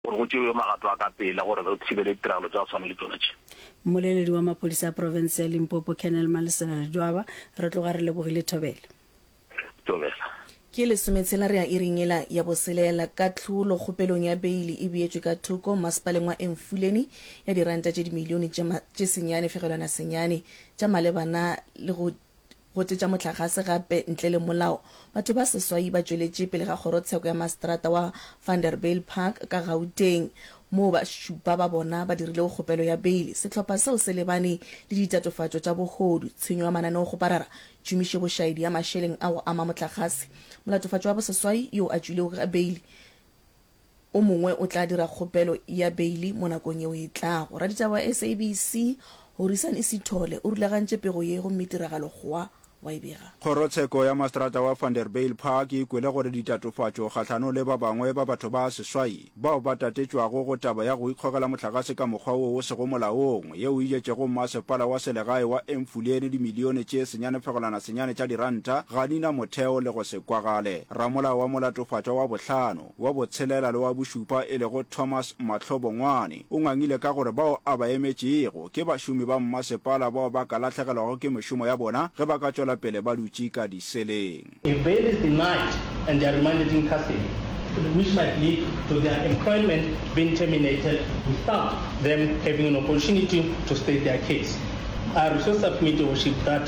gore go tšewe magato a ka pela gore re thibele ditiragalo tša go swana le tšona tše. Mmoleledi wa maphodisa a profense ya Limpopo, Colonel Malesela Ledwaba, Re tloga re lebogile thobela. Thobela. Ke lesometshela re ya iring yela ya boselela. Kahlolo kgopelong ya beili e beetšwe ka thoko masepaleng wa Emfuleni ya diranta tše dimilione tše senyane fegelwana senyane tša malebana le go Go tletša mohlagase gape ntle le molao. Batho ba seswai ba tšweletše pele ga kgorotsheko ya maseterata wa Vanderbijl Park ka Gauteng, moo ba šupa ba bona ba dirilego kgopelo ya beili. Sehlopha seo se lebane le ditatofatšo tša bohodu, tshenyo ya mananeokgoparara, tšhomišebošaedi ya mašeleng a go ama mohlagase. Molatofatšo wa boseswai yo a tšwilego ka beili, O mongwe o tla dira kgopelo ya beili mo nakong yeo e tlago. Raditaba wa SABC, Horisani Sithole, o rulagantše pego ye gomme tiragalo gwa wa e bega. Kgorotsheko ya Maseterata wa Vanderbijl Park e kwele gore ditatofatšo kgahlanong le ba bangwe ba batho ba seswai bao ba tatetšwago go taba ya go ikgogela mohlagase ka mokgwa wo o sego molaong yeo e jetšego mmasepala wa selegae wa Emfuleni dimilione tše senyanefegolanasenyane tša diranta ga di na motheo le go se kwagale. Ramolao wa Molatofatšwa wa Bohlano, wa Botshelela le wa Bošupa e lego Thomas Mahlo Bongwane o ngangile ka gore bao a ba emetšego ke bašomi ba mmasepala bao ba ka lahlegelwago ke mešomo ya bona ge ba ka tšwela pele ba dutše ka diseleng. If bail is denied and they are remanded in custody, which might lead to their employment being terminated without them having an opportunity to state their case, I resource submit your worship that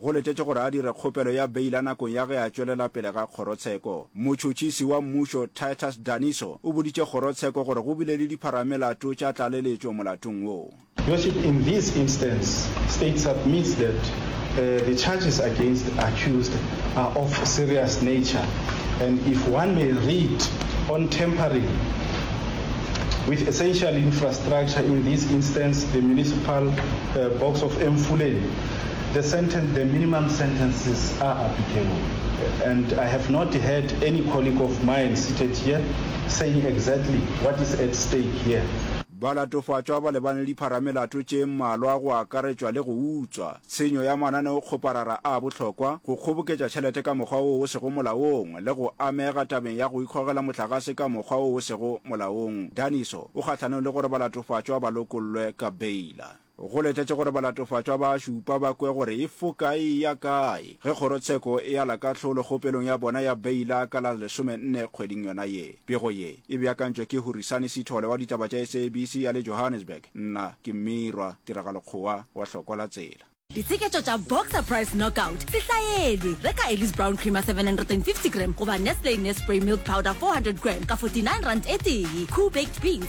Go letetšwe gore a dire kgopelo ya beila nakong ya ge a tšwelela pele ga kgorotsheko. Motšhotšhisi wa mmušo Titus Daniso o boditše kgorotsheko gore go bile le dipharamelato tša tlaleletšo molatong wo. Your Worship, in this instance, State submits that the charges against accused are of serious nature and if one may read on tampering with essential infrastructure, in this instance the municipal box of Emfuleni, the sentence, the minimum sentences are applicable and I have not heard any colleague of mine seated here saying exactly what is at stake here. Balatofatšwa ba lebane le dipharamelato tše mmalwa go akaretšwa le go utswa, tshenyo ya mananeokgoparara a bohlokwa, go kgoboketša tšhelete ka mokgwa wo o sego molaong le go amega tabeng ya go ikgogela mohlagase ka mokgwa wo o sego molaong. Daniso o kgahlanong le gore balatofatšwa ba lokollwe ka beila. Go letetše gore balatofatšwa ba a šupa ba kwe gore e foka e eya kae ge kgorotsheko e ala kahlolo kgopelong ya bona ya beila ka la lesome nne kgweding yona ye. Pego ye e beakantšwe ke Hurisani Sithole wa ditaba tša SABC ya le Johannesburg. Nna ke Mmirwa Tiragalo Kgowa wa Hlokwa la Tsela. Ditsheketšo tša Boxer Price Knockout, Sehlaeli, Reka Elly's Brown Creamer 750 gram goba Nestle Nespray Milk Powder 400 gram ka 49 rand e tee. Koo Baked Beans,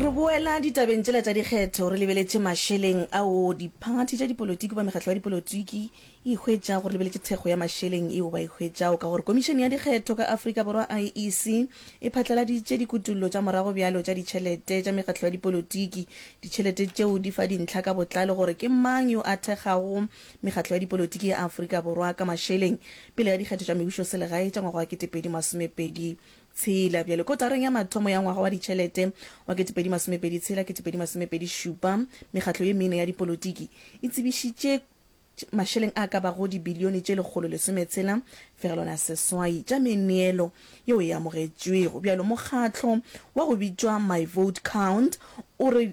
re boela ditabeng tsela tša dikgetho re lebeletše mašeleng ao diphathi tša dipolotiki ba mekgatlo ya dipolotiki e hwetšago re lebeletše thekgo ya mašeleng eo ba e hwetšago ka gore komišene ya dikgetho ka afrika borwa iec e phatlaladitše dikutullo tša morago bjalo tša ditšhelete tša mekgatlo ya dipolotiki ditšhelete tšeo di fa dintlha ka botlalo gore ke mang yo a thekgago Mekgatlo ya dipolotiki ya Afrika Borwa ka mašeleng pele ga dikgetho tša mebušoselegae tša ngwaga wa 2026. Bjale, kotareng ya mathomo ya ngwaga wa ditšhelete wa 2026, 2027, mekgatlo ye mene ya dipolotiki e tsebišitše mašeleng a ka bago dibilione tše lekgolo lesometshela fegelwana seswai tša meneelo yeo e amogetšwego. Bjalo, mokgatlo wa go bitšwa My Vote Count o re,